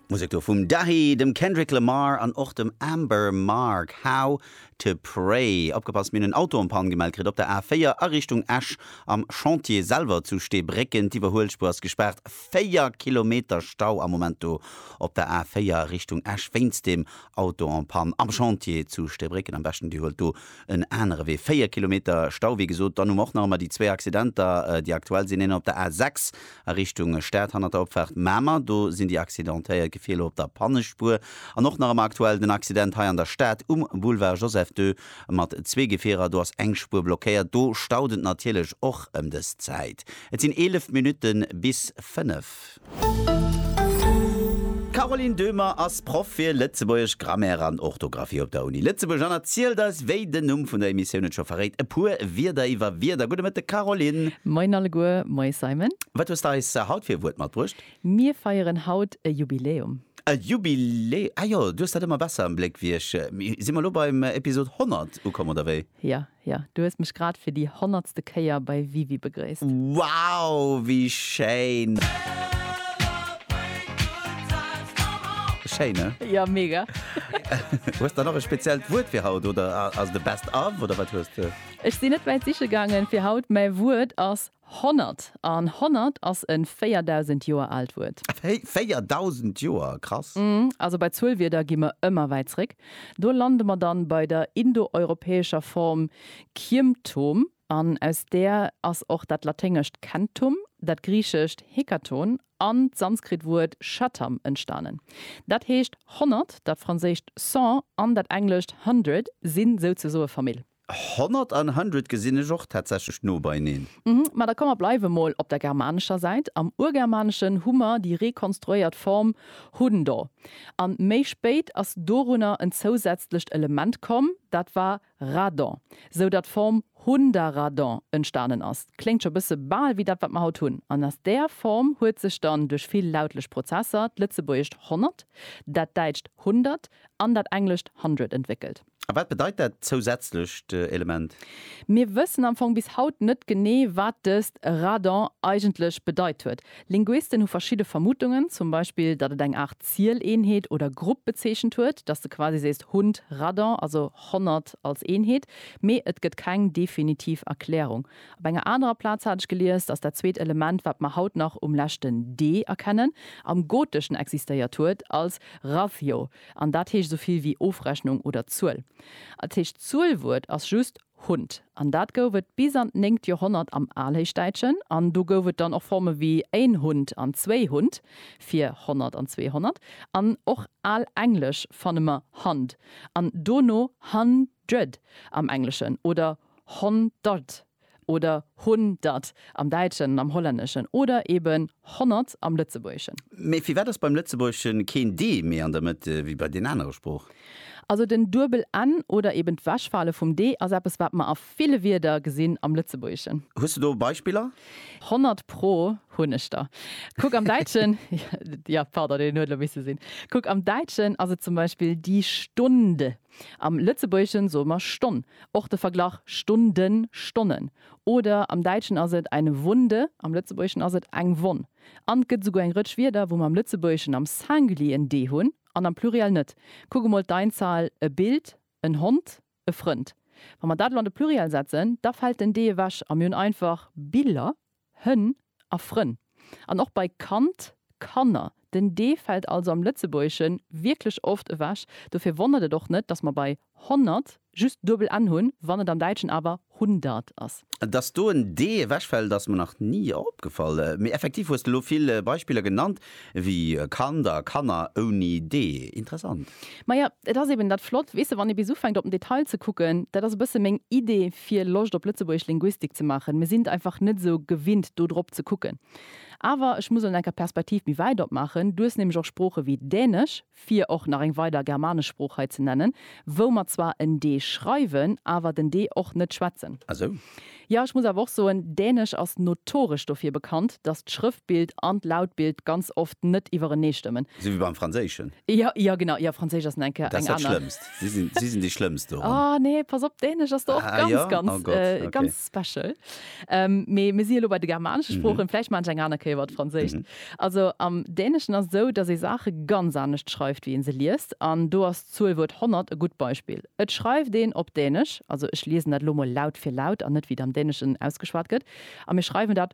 D'Musek do vum Dahi, dem Kendrick Lamar an och dem Amber Mark, How to Pray. Opgepasst, mir hunn en Auto en Panne gemellt kritt op der A4 a Richtung Esch am Chantier selwer zu Steebrécken. D'Iwwerhuelspuer ass gespaart, 4 Kilometer Stau am Moment do op der A4 Richtung Esch wéinst dem Auto en Panne am Chantier zu Steebrécken. Am beschten Dir huelt do en anere Wee, 4 Kilometer Stau wéi gesot. Dann hu mer och nach ëmmer déi zwee Accidenter, déi aktuell sinn, een op der A6, A Richtung Stad hannert der Opfaart Mamer, do sinn déi Accidentéiert gefier lo op der Pannespuer. An och nach ëmmer aktuell den Accident hei an der Stad um Boulevard Joseph Ii mat zwee Gefierer. Do ass eng Spuer blockéiert. Do staut et natierlech och ëm dës Zäit. Et sinn 11 Minutte bis 5. Caroline Döhmer ass Proff fir lëtzebuergesch Grammaire an Orthografie op der Uni Lëtzebuerg an erzielt eis, wéi den Numm vun der Emissioun et scho verréit, e puer Wierder iwwer Wierder. Gudde Mëtteg, Caroline. Moien alleguer. Moie, Simon. Wat hues de eis haut fir e Wuert matbruecht? Mir feieren haut e Jubiläum. E Jubilä Ah jo, du hues dat ëmmer besser am Bléck wéi ech. Mee si mer elo beim Episod 100 ukomm, oder wéi? Jo, Jo, du hues mech grad fir déi honnertste Kéier bei WiWi begréisst. Wow, wéi schéin! Schéin, ne? Jo, mega! Hues der nach e speziellt Wuert fir haut oder ass et e Best of oder wat hues de? Ech sinn net wäit siche gaangen fir haut, mäi Wuert ass Honnert. An honnert ass e 4.000 Joer aalt Wuert. Wéi? 4.000 Joer? Krass! Mmh, also bei Zuelwierder gi mer ëmmer wäit zréck. Do lande mer dann bei der indoeuropäescher Form Kiemtom, an aus där ass och dat laténgescht centum, dat griichescht hekaton an d'sanskrit Wuert shatam entstanen. Dat heescht, honnert, dat franséischt cent an dat englescht hundred sinn souzesoe Famill. 100 an hundred gesinn ech och tatsächlech no beineen. Mhm, ma da komm mer bleiwe mol op der germanescher Säit. Am Urgermaneschen hu mer déi rekonstruéiert Form hundo. An méi spéit ass dorunner en zousätzlecht Element komm, dat war radon, sou datt d'Form hundaradon entstanen ass. Kléngt scho bësse bal wéi dat, wat mer haut hunn. An aus där Form huet sech dann duerch vill lautlech Prozesser d'Lëtzebuergescht honnert, dat däitscht hundert an dat englescht hundred entwéckelt. A wat bedeit dat zousätzlecht Element? Mir wëssen am Fong bis haut net genee, wat dëst Radon eigentlech bedeit huet. Linguisten hu verschidde Vermutungen, zum Beispill, datt et eng Aart Zieleenheet oder Grupp bezeechent huet, datt s de quasi sees Hund Radon, also honnert als Eenheet, mee et gëtt keng definitiv Erklärung. Op enger anerer Plaz hat ech gelies, datt dat zweet Element, wat mer haut nach um leschten d erkennen, am Goteschen existéiert huet als rathio. An dat heescht esou vill wéi Ofrechnung oder Zuel. Als éischt Zuelwuert ass just Hund. An dat gouf et bis an d'néngt Joerhonnert am Alhéichdäitschen. An do gouf et dann och Forme wéi én Hund an zwéi Hund fir Honnert an Zweehonnert. An och al Englesch fanne mer Hund an dono Hundred am Engleschen oder Honderd Oder hun dat am Däitschen an am Hollänneschen oder eben honnert am Lëtzebuergeschen. Mee firwat ass beim Lëtzebuergesche keen d méi an der Mëtt wéi bei den anere Sprooch? Also den duebel n oder eben d'Wechfale vum d ass eppes, wat mer a ville Wierder gesinn am Lëtzebuergeschen. Hues de do Beispiller? Honnert pro hunn ech der. Kuck am Däitschen, jo, pardon, deen huet elo misse sinn, kuck am Däitschen ass et zum Beispill die Stunde. Am Lëtzebuergeschen soe mer Stonn. Och de Verglach Stunden, Stonnen. Oder am Däitschen ass et eine Wunde, am Lëtzebuergeschen ass et eng Wonn. An 't gëtt esouguer eng Rëtsch Wierder, wou mer am Lëtzebuergeschen am Singulier en d hunn an am Pluriel net. Kuck emol d'Einzahl, e Bild, en Hond, e Frënd. Wa mer dat elo an de Pluriel setzen, da fält den d ewech a mir hunn einfach Biller. Hënn a Frënn an och bei Kand, Kanner. Den d fält also am Lëtzebuergesche wierklech oft ewech. Dofir wonnert et och net, dass mer bei honnert just duebel n hunn, wann et am Däitschen awer hundert ass. Dass do en d ewechfält, ass mer nach ni opgefall. Mee effektiv hues de elo vill Beispiller genannt, Wéi e Kand a Kanner ouni D. Interessant. Maja, et ass eben dat Flott, weess de, wann ee bis ufänkt op den Detail ze kucken. Dat ass e bësse meng Idee fir Loscht op Lëtzebuergesch Linguistik ze maachen. Mir sinn einfach net esou gewinnt do drop ze kucken. Awer ech muss elo eng Kéier d'Perspektiv méi wäit opmaachen. Du hues nämlech och Sprooche wéi Dänesch. fir och nach eng weider germanesch Sprooch hei ze nennen, wou mer zwar en d schreiwen, awer den d och net schwätzen. Ah sou. Jo, ech muss awer och soen, Dänesch ass notoresch dofir bekannt, dass d'Schrëftbild an d'Lautbild ganz oft net iwwerenee stëmmen. Sou wéi beim Franséischen? Jo, jo, genau. Jo, Franséisch ass enke eng aner. Dat ass dat Schlëmmst. Si sinn déi Schlëmmst doran. Ah, nee, pass op, Dänesch ass do och ganz, ganz, ganz. Ah jo? Oh Gott, ok. Special. Ähm, mee mir si elo bei de germanesche mhm. Sproochen, vläicht man eng aner Kéier wat Franséischt. Mhm. Also am Däneschen ass esou, datt ee Saache ganz anescht schreift, wéi een se liest. An do ass d'Zuelwuert 100 e gutt Beispill. Et schreift een op Dänesch, also ech liesen dat lo mol laut fir laut an net wéi et am Däneschen ausgeschwat gëtt, a mir schreiwen dat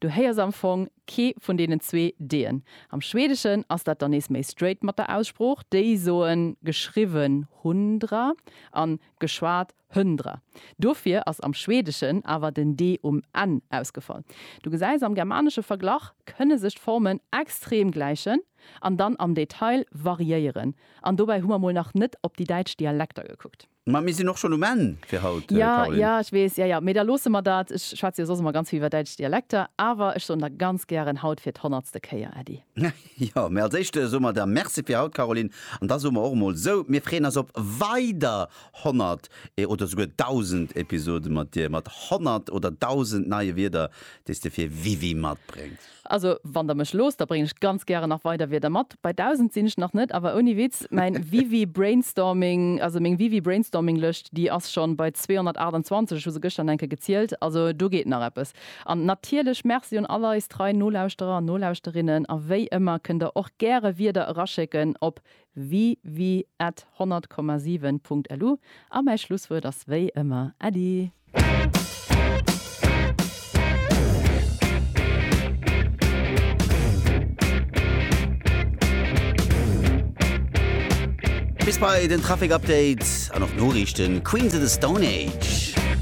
Du héiers am Fong kee vun deenen zwee D'en. Am Schwedeschen ass dat dann nees méi straight mat der Aussprooch, déi soen geschriwwen hundra an geschwat höndra. Dofir ass am Schwedeschen awer den D um Enn ausgefall. Du gesäis, am germanesche Verglach kënne sech d'Formen extrem gläichen an dann am Detail variéieren. An dobäi hu mer mol nach net op déi däitsch Dialekter gekuckt. Mä mir sinn och schonn um Enn fir haut, Caroline. Jo, jo, ech weess. Jo, jo, mee da loosse mer dat. Ech schwätze jo soss ëmmer ganz vill iwwer däitsch Dialekter, awer ech soen der ganz gären haut fir d'honnertste Kéier Äddi. Jo, mee als éischt soe mer der Merci fir haut, Caroline. An da soe mer och emol esou, mir freeën eis op weider honnert oder souguer dausend Episode mat dir, mat honnert oder dausend neie Wierder, déi s de fir Wiwi matbréngs. Also wann der mech loosst, da bréngen ech ganz gären nach weider Wierder mat. Bei 1000 sinn ech nach net, awer ouni Witz, mäin Wiwi Brainstorming, also meng Wiwi Brainstorming Lëscht, déi ass schonn bei 228, ech hu se gëschter an enke gezielt, also do geet nach eppes. An natierlech Merci un all eis trei Nolauschterer an Nolauschterinnen, a wéi ëmmer kënnt der och gäre Wierder eraschécken op www.100,7.lu A mäi Schlusswuert ass wéi ëmmer Äddi! Bis bei den Trafic Update an och d'Noriichten Queens of the Stone Age.